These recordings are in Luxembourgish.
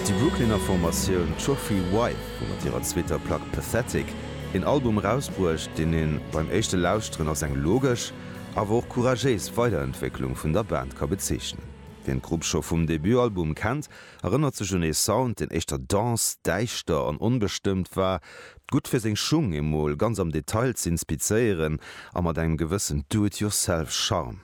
Déi Brooklyner Formatioun Trophy Wife hu mat hirer zweeter Plack Pathetic een Album erausbruecht, deen een beim éischte Lauschteren als eng logesch, awer och couragéis Weiderentwécklung vun der Band ka bezeechnen. Wien d'Grupp scho vum Debutalbum kennt, erënnert sech un ee Sound, deen éischter dense, däischter an onbestëmmt war, gutt fir seng Schung emol ganz am Detail z'inspizéieren a mat engem gewëssen Do-it-yourself Charme.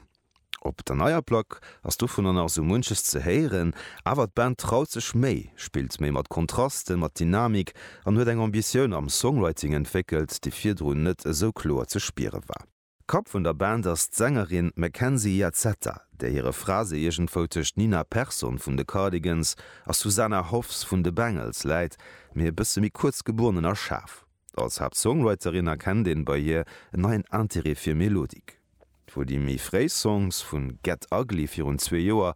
Op der neier Plack ass dovunner nach esou munches ze héieren, awer d'Band traut sech méi, spillt méi mat Kontrasten, mat Dynamik an huet eng Ambitioun am Songwriting entwéckelt, déi virdrun net esou kloer ze spiere war. Kapp vun der Band ass d'Sängerin Mackenzie Iazzetta, där hire Phrase iergendwou tëscht Nina Persson vun de Cardigans a Susanna Hoffs vun de Bangles läit, mee e bësse méi kuerz gebunnen a schaarf. Als Haaptsongwriterin erkennt een bei hir en neien Interêt fir Melodik. Wou déi méi fréi Songs vu Get Ugly virun zwee Joer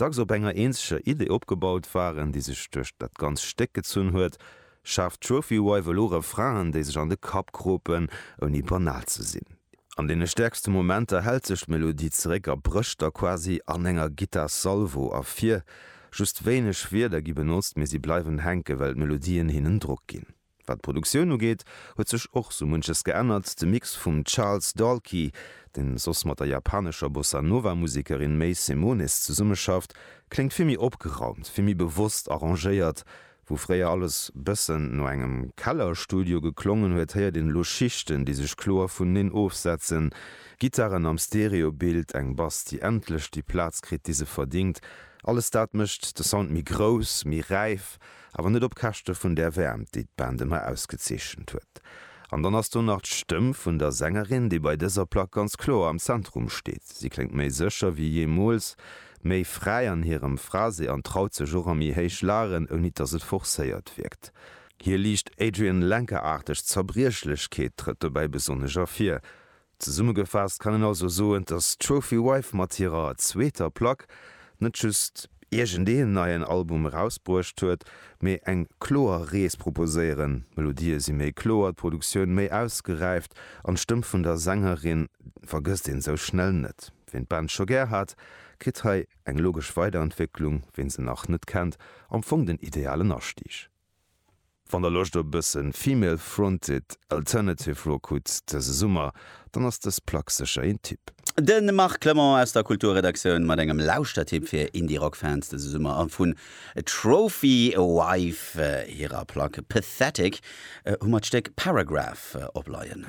dacks op enger eenzeger Idee opgebaut waren, déi sech duerch dat ganzt Stéck gezunn huet, schaaft d'Trophy Wife elo Refrainen, déi sech an de Kapp kropen, ouni banal ze sinn. An deene stäerkste Momenter hält sech d'Melodie zeréck a brécht da quasi an enger Gittar-Salvo ervir. Just wéineg Wierder gi benotzt, mee si bleiwen hänken, well d'Melodien hinnen Drock ginn. Wat d'Produktioun ugeet, huet sech och sou munches geännert. De Mix vum Charles Dalkey, deen soss mat der japanescher Bossa Nova Musekerin Mei Simonis zesummeschafft, kléngt vill méi opgeraumt, vill méi bewosst arrangéiert. Wou fréier alles bëssen no engem Kellerstudio geklongen huet, héiert een elo Schichten, déi sech kloer vuneneen ofsetzen, Gittaren am Stereobild, eng Bass, déi endlech déi Plaz kritt, déi se verdingt. Alles dat mécht de Sound méi grouss, méi räif Awer net op Käschte vun där Wäermt, déi d'Band ëmmer ausgezeechent huet. An dann ass do nach d'Stëmm vun der Sängerin, déi bei dëser Plack ganz kloer am Zentrum steet. Si kléngt méi sécher wéi jeemools, méi fräi an hirem Phrasé an traut sech och a méi héich Lagen, ouni dass et forcéiert wierkt. Hir liicht Adrianne Lenker-aarteg Zerbriechlechkeet trëtt dobäi besonnesch ervir. Zesummegefaasst kann een also soen, dass d'Trophy Wife mat hirer zweeter Plack net just iergendeen neien Album erausbruecht huet, mee eng kloer Rees proposéieren. D'Melodië si méi kloer, d'Produktioun méi ausgeräift an d'Stëmm vun der Sängerin vergësst een esou schnell net. Ween d'Band scho gär hat, kritt hei eng logesch Weiderentwécklung, ween se nach net kennt, am Fong den idealen Astieg. Wann der Loscht op e bëssen Female Fronted Alternative Rock hutt dëse Summer, dann ass dës Plack sécher een Tipp. De Marc Clement aus der Kulturredaktioun mat engem Lauschtertipp fir Indie-Rock-Fans dëse Summer a vun Trophy Wife hirer Plack Pathetic hu mer d'Stéck Paragraph opleien.